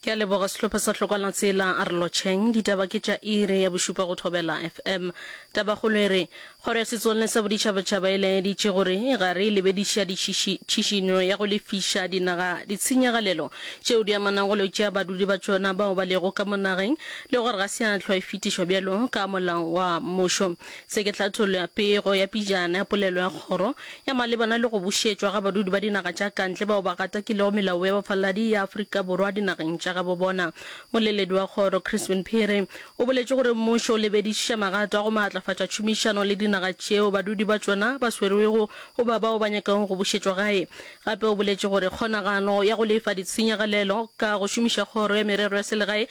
Ke a leboga sehlopha sa Hlokwana Tsela a re lotšheng. Ditaba ke tša iri ya bošupa go Thobela FM. Tabakgolo e re, Kgoro ya Setswalle sa Boditšhabatšhaba e laeditše gore ga re lebediša ditšiši, tšhišinyo ya go lefiša dinaga ditshenyagalelo tšeo di amanago le go tšea badudi ba tšona bao ba lego ka mo nageng le gore ga se ya hlwa e fetišwa bjalo ka molao wa mmušo. Se ke tlhathollo ya pego ya pejana ya polelo ya kgoro ya malebana le go bušetšwa ga badudi ba dinaga tša kantle bao ba gatakilego melao ya bafaladi ya Afrika Borwa dinageng tša gabo bona. Moleledi wa kgoro, Crispin Phiri, o boletše gore mmušo o lebedišiša magato a go maatlafatša tšhomišano le dinaga tšeo badudi ba tšona ba swerwego goba bao ba nyakago go bušetšwa gae. Gape o boletše gore kgonagano ya go lefa ditshenyegalelo ka go šomiša kgoro ya merero ya selegae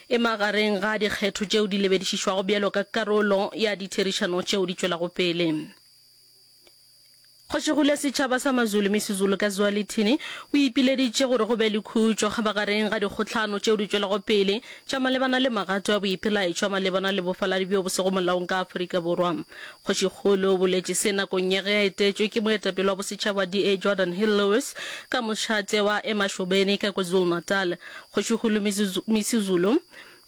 e magareng ga dikgetho tšeo di lebedišišwago bjalo ka karolo ya ditherišano tšeo di tšwelago pele. Kgoši Gule Setšhaba sa Mazulu, Misizulu ka Zwalithini, o ipileditše gore go be le khutšo magareng ga dikgohlano tšeo di tšwelago pele tša malebana le magato a boipelaetšo malebana le bofaladi bjo bo sego molaong ka Afrika Borwa. Kgošikgolo o boletše se nakong ya ge a etetšwe ke moetapele wa bosetšhaba DA Jordan Hill-Lewis ka mošate wa Emashobeni ka KwaZulu-Natal. Kgošikgolo Misuzulu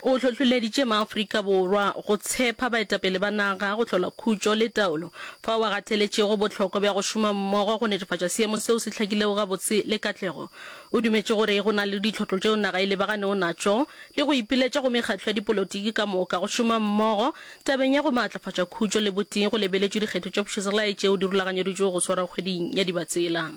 o hlohloleditše maAfrika Borwa go tshepa baetapele ba naga go hlola khutšo le taolo, fao a gateletšego bohlokwa bja go šoma mmogo go netefatša seemo seo se hlakilego gabotse le katlego. O dumetše gore go na le ditlhotlo tšeo naga e lebaganeo natšo le go ipiletša go mekgatlo ya dipolotiki ka moka go šoma mmogo tabeng ya go maatlafatša khutšo le botee go lebeletšwe dikgetho tša pušoselae tšeo di rulaganyeditšwego go swarwa kgweding ya Dibatsela.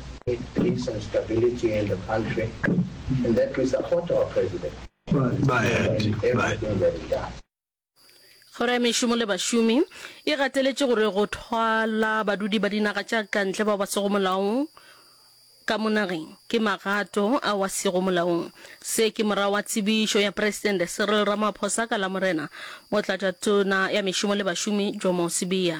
It brings some stability in the country and that we support our president in everything that he does. Kgoro ya Mešomo le Bašomi e gateletše gore go thwala badudi ba dinaga tša kantle bao ba sego molaong ka mo nageng ke magato ao a sego molaong. Se ke morago ga tsebišo ya Presidente Cyril Ramaphosa ka Lamorena, Motlatšatona ya Mešomo le Bašomi Jomo Sibiya.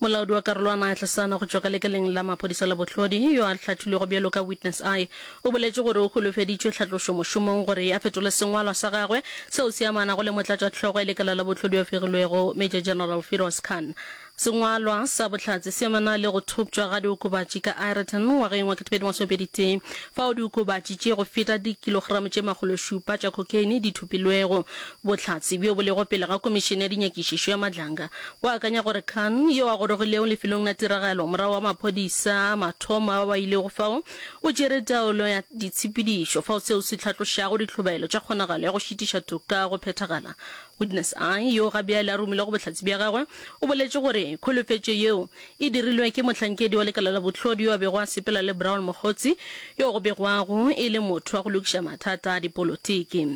Molaodi wa karolwana ya Tlasana go tšwa ka lekaleng la maphodisa la Bohlodi, yo a hlathilwego bjalo ka Witness I, o boletše gore o holofeditšwe tlhatlošo mošomong gore a fetole sengwalwa sa gagwe seo se amanago le motlatšahlogo ya lekala la Bohlodi yo fegilwego, Major General Firoz Khan. Sengwalwa sa bohlatse se amana le go thoptšwa ga diokobatši ka Ireton ngwageng wa ketekgolo masome pedi tee, fao diokobatši tše go feta dikilogramo tše makgološupa tša cocaine di thopilwego. Bohlatse bjo bo lego pele ga Komišene ya Dinyakišišo ya Madlanga bo akanya gore Khan, yo a gorogilego lefelong la tiragalo morago ga maphodisa a mathomo a ba ba ilego fao, o tšere taolo ya ditshepedišo fao seo se hlatlošago ditlhobaelo tša kgonagalo ya go šitiša toka go phethagala. Witness I, yo ga bjale a romilwe go bohlatse bja gagwe, o boletše gore kholofetšo yeo e dirilwe ke mohlankedi wa lekala la bohlodi yo a bego a sepela le Brown Mokgotsi, yo go begwago e le motho wa go lokiša mathata a dipolotiki.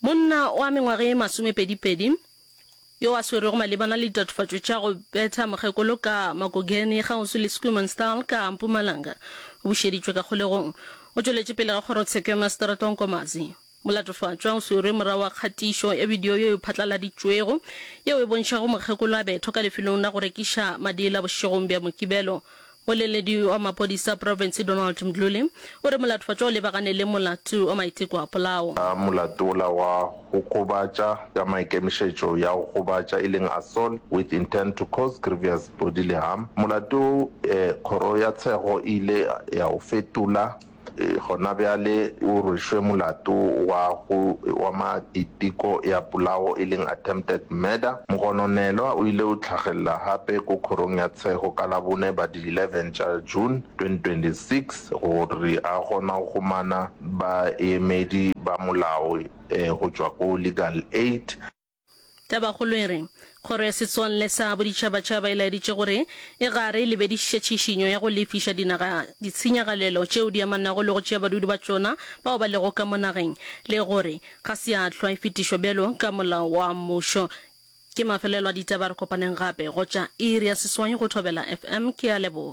Monna wa mengwaga ye masomepedipedi, yo a swerwego malebana le ditatofatšo tša go betha mokgekolo ka makogene kgauswi le Schoemansdal ka Mpumalanga, o bušeditšwe ka kgolegong. O tšweletše pele ga kgorotsheko ya maseterata wa Nkomazi. Molatofatšwa o swerwe morago ga kgatišo ya bidio yeo e phatlaladitšwego yeo e bontšhago mokgekolo a bethwa ka lefelong la go rekiša madiela bošegong bja Mokibelo Moleledi wa maphodisa profense Donald Mdluli o re molatofhacwa o lebagane le molato wa maiteko a polao. A molato wola wa go gobatša ka maikemišetšo ya go gobatša e leng assault with intent to cause grievous bodily harm, molato wo kgoro ya tshego e ile ya o fetola. Gona bjale o rwešwe molato wa go oma diteko ya polawo e leng attempted murder. Mogononelwa o ile o tlhagelela gape ko Kgorong ya Tshego ka Labone ba di 11 tša June 2026 gore a kgona go humana baemedi ba molao go tšwa ko Legal Aid. Tabakgolo e re, Kgoro ya Setswalle sa Boditšhabatšhaba e laeditše gore e gare e lebediše tšhišinyo ya go lefiša dinaga ditshenyagalelo tšeo di amanago le go tšea badudi ba tšona bao ba lego ka mo nageng le gore ga se ya hlwa e fetišwa bjalo ka molao wa mmušo. Ke mafelelo a ditaba re kopaneng gape go tša iri ya seswai go Thobela FM. Ke a leboga.